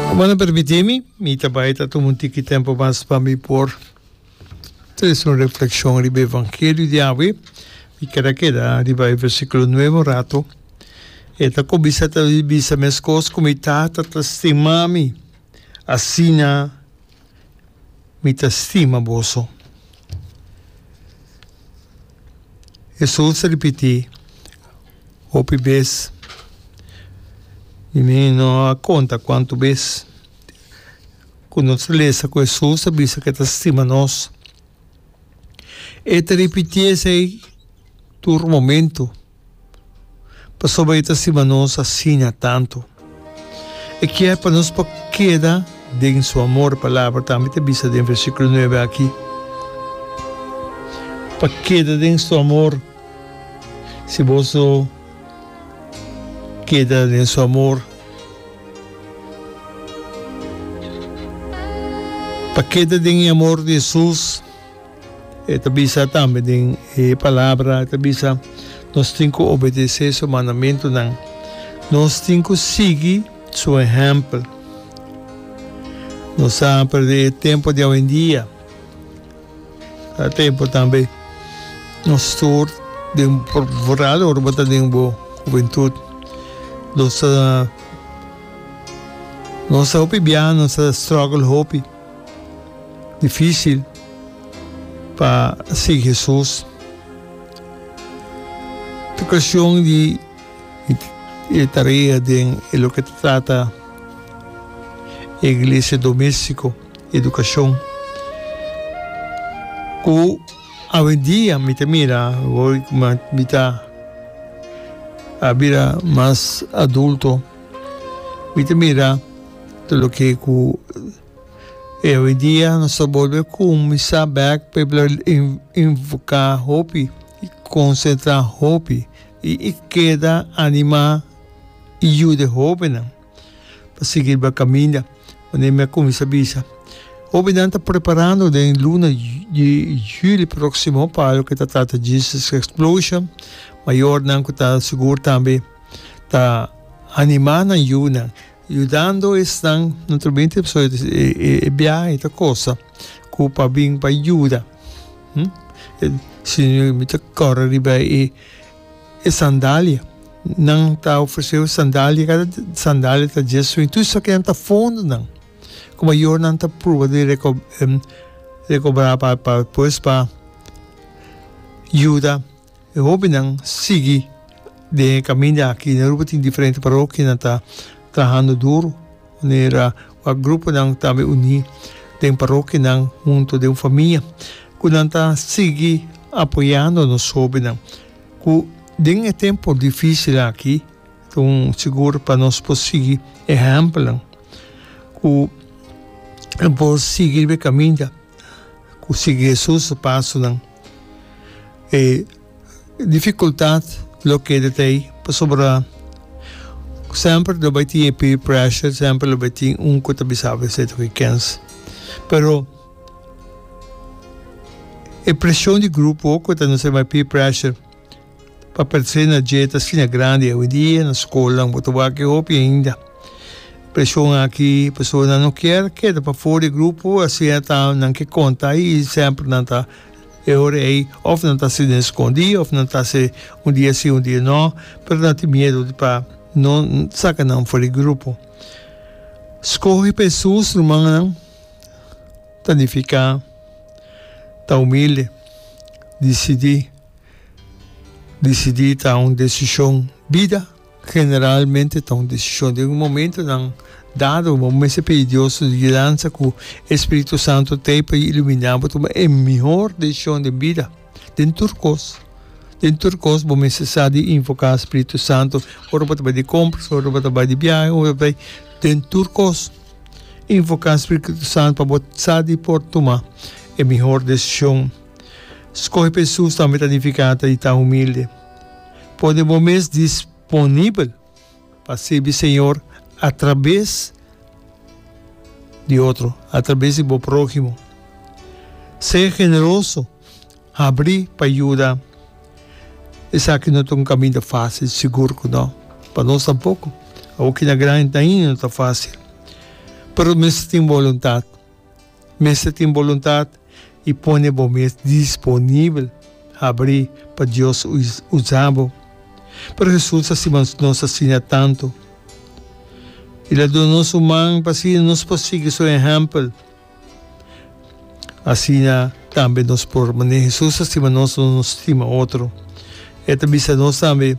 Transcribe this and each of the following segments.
Cuman a permiti mi, mi ta bay ta tuma un tiki tempo mas pa mi por traci un reflexion riba e vangelio di awe. Mi ker a keda riba e versiculo nueve un rato. E ta cuminsa ta bisa mescos cu mi tata ta stima mi, asina. mi ta stima boso. Hesus a ripití hopi bes, mi no a konta kuantu bes, ku nos a lesa ku Hesus a bisa ku e ta stima nos. E ta ripití esei tur momentu. Pasobra e ta stima nos asiña tantu. E kier pa nos por keda den su amor. Palabra tambe ta bisa den versikulo nuebe aki, pa keda den su amor. Si bos no keda den su amor, pa keda den e amor di Hesus. E ta bisa tambe den e Palabra, e ta bisa, nos tin ku obedesé Su mandamentunan. Nos tin ku sigui Su ehèmpel. Nos a perdé e tempu di awendia. Ta tempu tambe nos tur den, foral ora bo ta den bo hubentut. Nos a, nos a hopi biaha, nos a struggle hopi. difícil pa sigui Jesús. E cuestión di e tarea den e loke ta trata e iglesia doméstico, educación. Cu awendia mi ta mira, hoy kuma mi ta a bira mas adulto, mi ta mira. Tur loke ku e hoidia nos ta bolbe kuminsá bèk pa e bira invoká hopi, konsentrá hopi i e keda animá i yuda e hobennan pa sigui riba kaminda. Manera mi a kuminsá bisa, hobennan ta preparando den luna di juli próksimo pa loke e ta trata Jesus Explosion. Mayornan ku ta sigur tambe ta animá nan yunan. Yudando esnan, no ta bin tip solo e biaha, e ta cosa cu pa bin pa yuda, sino e mester corre riba e sandalia. Nan ta ofrecé e sandalia, cada sandalia ta dies soe. Tur esaki nan ta fondonan cu mayor nan ta pruba di recobrá pa despues pa yuda. E hobennan sigui den e kaminda aki. Na Aruba tin diferente parokia nan ta trahando duru manera ku a gruponan tambe uní den parokianan huntu den un famia ku nan ta sigui apoyando nos hobennan ku den e tempu difísil aki ta un sigur pa nos por sigui e ehèmpelnan ku nan por sigui riba e kaminda ku sigui Hesus su pasonan. E dificultad lo keda t'ei pasobra semper lo bai tin e peer pressure, semper lo bai tin un ku ta bisa esei ta ke kens. Pero e presion di grupo ku ta nos e bai peer pressure. Papel se na dje ta asina grandi awidia na skolnan bo ta wak e hopi ainda preshon aki personanan no kier keda pafo di grupo asia ta nan ke konta i semper nan ta e hora ei of nan ta si den skondi of nan ta se un dia si un dia no pero nan tin miedu di pa no saka nan for di grupo skohe pa e su instrumannan planifica ta humilde disidi. Disidí ta un desishon. Bida generalmente ta un desishon. Den un momentu nan dado bo mester pidi Dios su gidansa ku e spiritu santu t'ei pa e iluminá bo tuma e mihor desishon den bida, den tur kos. Den tur kos bo mester sa di invoká spiritu santu. Ora bo ta bai di kompras, ora bo ta bai di biahe, ora bo ta bai den tur kos invoká spiritu santu pa bo sa di por tuma e mihor desishon. Skohe pa Hesus tambe ta nifiká ta di ta humilde. Pone bo mes disponibel pa sirbi Señor atrabes di otro, atrabes di bo próhimo. Sé generoso, habrí pa yuda. Esaki no ta un kaminda fásil, sigur ku no. Pa nos tampoko. Awoki na gran hent na India no ta fásil. Pero mester tin boluntat. Mester tin boluntat i pone bo mes disponibel habri pa Dios usa bo. Pero Hesus a stima nos asina tantu. I lo a duna nos un man pa asina nos por sigui su ehèmpel. Asina tambe nos por manera Hesus a stima nos, nos stima otro. E ta bisa nos tambe.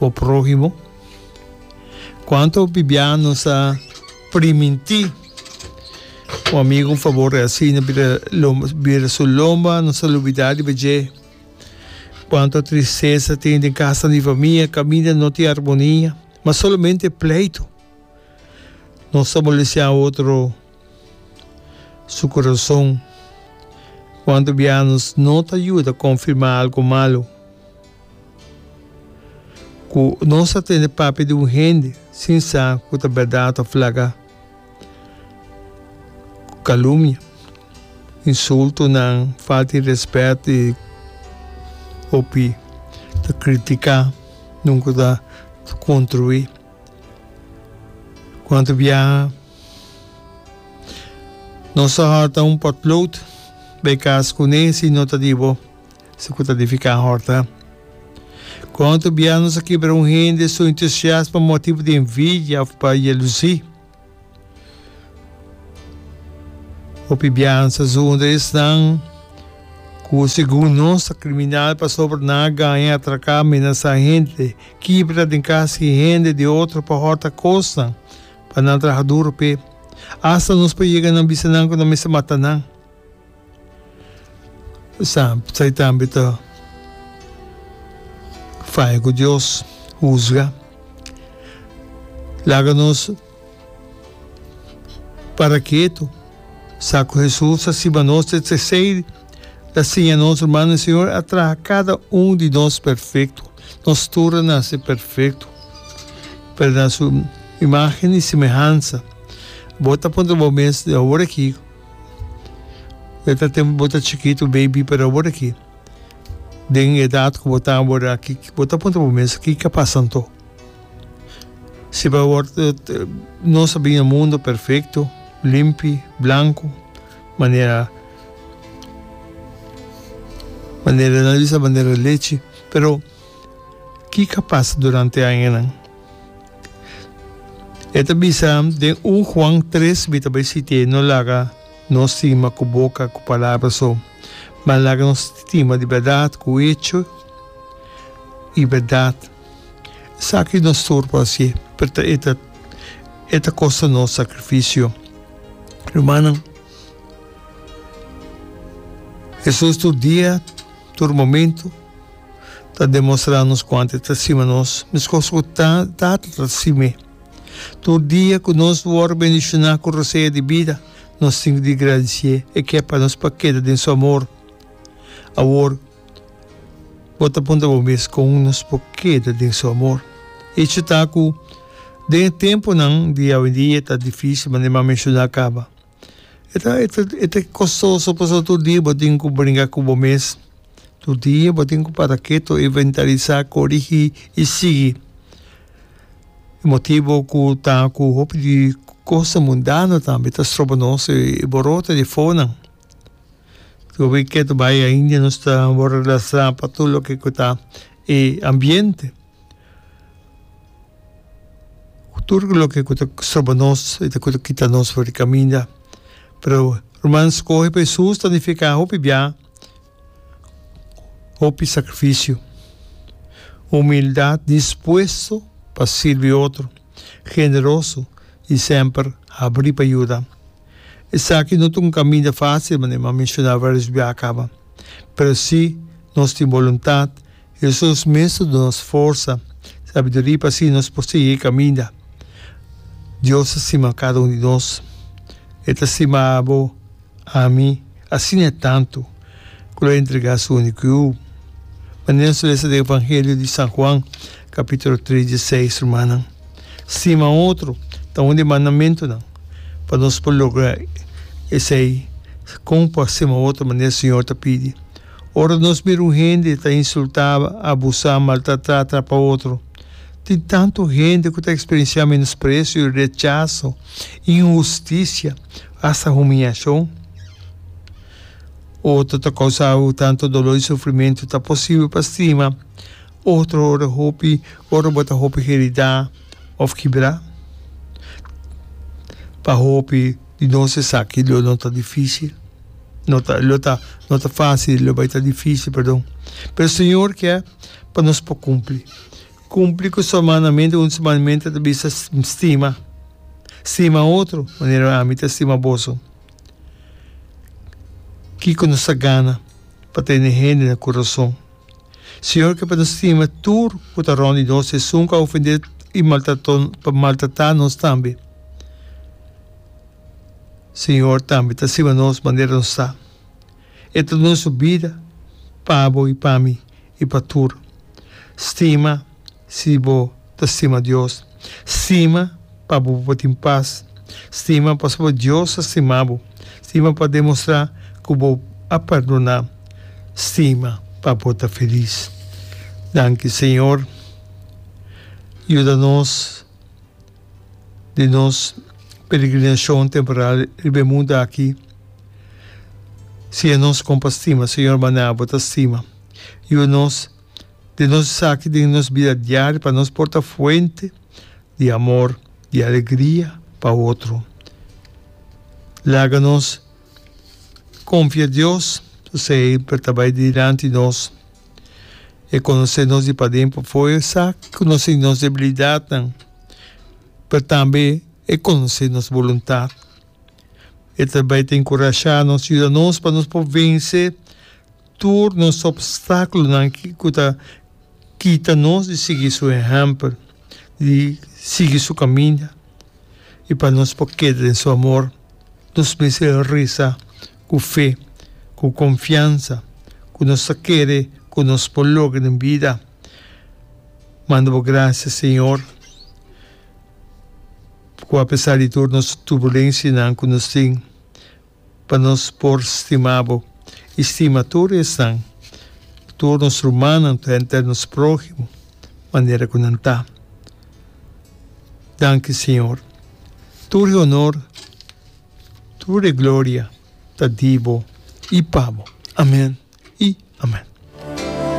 Bo próhimo. Kuantu bibiano sa primintí un amigu un fabor así na bira lomba bira su lomba no sa lubidá riba dje. Kuantu tristesa tin den kasa di famia kaminda no tin armonia ma solamente pleitu. No sa molestiá otro su kurason. Kuantu bianos no ta yuda konfirmá algu malu. Ku nos ta tende papia di un hende sin sa ku ta bèrdat òf laga. Kalumia, insultunan, falta di rèspèt i hopi ta kritiká, nunku ta kontruí. Kuantu biaha nos ta hòrta un pòtlout bai kas kuné si no ta di bo. Su cu ta edifica un horta. Con tu biaha nos a kibra un hende su entusiasmo motibu di envidia of pa jelusi. Hopi biaha nos a zundra esnan cu segun nos ta criminal pasobra nan a gaña, atraca, menasa hende, kibra den cas di hende di otro pa horta cosnan pa nan traha duro p'e. Asta nos por yega nan bisa nan cu nan mester mata nan. Sa, sa e tambe ta faya ku Dios husga. Laga nos para ketu, sa ku Hesus a siña nos te tresei, ta siña nos, Ruman, e Siñor a traha kada un di nos perfekto. Nos tur a nase perfekto, pero na su imágen i semehansa. Bo ta puntra bo mes, di awor aki, E ta tempo bo ta chikitu, baby, pero awor aki den e edat ku bo ta awor aki bo ta puntra bo mes kiko a pasa anto? Si bo awor nos a bini na mundo perfekto, limpi, blanku manera manera nan bisa manera lechi pero Kiko a pasa durante e añanan? E ta bisa, Den un Juan tres mi ta bai siti'é, No laga no stima ku boka, ku palabra so, ma laga no stima di bèrdat ku echo i bèrdat. Esaki no sur pa hasié, pero e ta e ta kosta nos sakrifisio. Rumannan, Hesus tur dia, tur momentu. ta demostrá nos kuantu e ta stima nos, meskos ku Tata ta sim'é. Tur dia ku nos wòrdu bendishoná ku rosea di bida, nos tin di gradisié e ke pa nos pa keda den su amor. Awor, bo ta punta bo mes, kon nos por keda den su amor? Hecho ta ku, den e tempunan di awendia ta difísil manera mi a menshoná kaba. E ta e ta e ta kostoso pasobra tur dia bo tin ku bringa ku bo mes, tur dia bo tin ku para ketu, inventarisá, korigí i sigui. E motibu ku ta ku hopi di kosnan mundano tambe ta stroba nos e boroto di fonan. Tur wi ketu bai ainda nos ta wòrdu lasrá pa tur loke ku ta e ambiente. Tur loke ku ta stroba nos i ku ta kita nos for di kaminda. Pero ruman skohe pa Hesus ta nifiká hopi biaha, hopi sakrifisio, humildat, dispuesto pa sirbi otro, generoso i semper habrí pa yuda. Esaki no ta un kaminda fásil, manera mi a menshoná vários biaha kaba, pero sí nos tin boluntat Hesus mes a duna nos forsa, sabiduria pa asina nos por sigui e caminda. Dios ta stima cada un di nos. E ta stima abo, ami, asina tantu cu lo entrega su unico Yu. Manera nos lesa den Evangelio di San Juan, capitulo tres di seis, rumannan, stima otro ta un di e mandamentonan pa nos por logra esey. Con por a stima otro manera Señor ta pidi? Ora nos mira un hende ta insultá, abusá, maltratá tra pa otro. Tin tantu hende ku ta eksperensiá menospresio, rechaso, inhustisia, asta humiashon. Otro ta kousá ku tantu doló i sufrimentu ta posibel pa stima otro ora hopi, ora bo ta hopi heridá òf kibrá. Pa hopi. di nos esaki lo no ta difícil, no ta lo ta no ta fácil lo bai ta difícil perdon pero Señor kè pa nos por cumpli cumpli cu su mandamento un di su mandamento ta bisa stima stima otro manera ami ta stima boso kico nos ta gana pa tene hende na curason. Señor ke pa nos stima tur ku ta rond di nos sesun ku a ofendé i maltrató pa maltratá nos tambe. Señor tambe ta stima nos manera nos ta. E ta duna su bida pa bo i pa mi i pa tur. Stima. Si bo ta stima Dios, stima pa bo por tin pas. Stima pasobra Dios a stima bo. Stima pa demostrá ku bo a perdoná. Stima pa bo ta felis. Danki, Señor. Yuda nos den nos peregrinashon temporal riba e mundu aki. Siña nos kon pa stima, Señor, maná bo ta stima. Yuda nos. den nos esaki den nos bida diario pa nos por ta fuente di amor, di alegria pa otro. Laga nos konfia Dios pasobra e por ta bai dilanti nos, e konosé nos di paden pafó, e sa konosé nos debilidatnan, pero tambe e konosé nos boluntat. E ta bai ta enkurashá nos, yuda nos pa nos por vense. tur nos opstáculonan cu ta kita nos di sigui su ehempel, di sigui su caminda y pa nos por keda den su amor, nos mester reza cu fe, cu confiansa cu nos ta kere cu nos por logra den bida. Manda bo gracia Señor cu apesar di tur nos turbulencianan cu nos tin, Pa nos por stima bo i stima tur esnan, tur nos rumannan ta henter nos prohimo manera ku nan ta. Danki Siñor. Tur e honor, tur e gloria ta di bo i pa bo. Amen i amen.